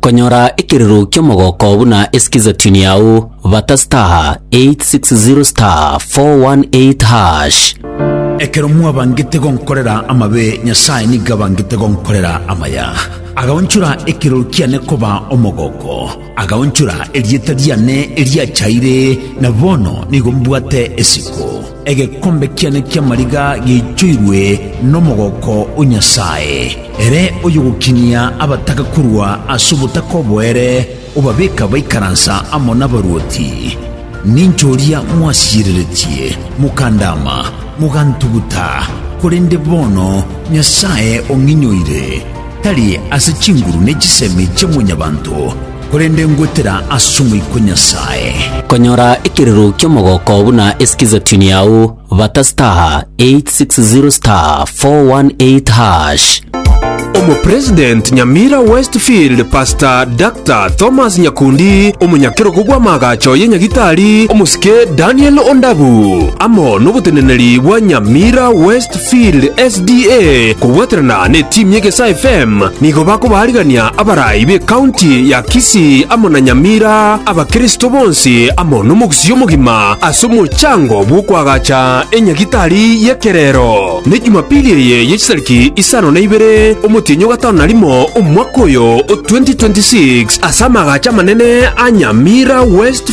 Konyora ekerero ki'omogoko buna esikiza tune yao, bata star 860 star 418 hash. Ekero mwabangete gonkorera amabe, Nyasae nigo abangete gonkorera amaya. Agaonchora ekirori kiane koba omogoko, agaonchora erieta riane eriachaire, na bono nigo mbwate esiko. Egekombe kiane ki'amariga giaichoirwe nomogoko o Nyasae, ere oyogokinia abataka korwa ase obotaka obo ere obabeka baikaransa amo nabaruoti. Ninche oria mwasiireretie, mokandaama, mogantuguta, korende bono Nyasae ong'inyoire, tari ase chinguru ne chisemi chia mwanyabanto, Korende ngwetera as'Omoika o Nyasae. Konyora ekirero ki'omogoko buna eskizatyuni yao, bata *860*418#. Omopresident Nyamira Westfield Pastor Dr. Thomas Nyakundi, omonyakerogo bw'amaagacho ye Nyagitari omosike Daniel Ondabu, amo noboteneneri bwa Nyamira West Field SDA kobwaterana netimu y'Egesaa FM nigo bakobaarigania abarai b'ekaunti ya Kisii amo na Nyamira abakristo bonsi amo nomogusii omogima ase omochango bw'okoagacha enyagitari y'ekerero. Ne Jumapili eye ye chitariki isano na ibere omotienyi o gatano na rimo omwaka oyo o 2026 ase amaagacho amanene a Nyamira West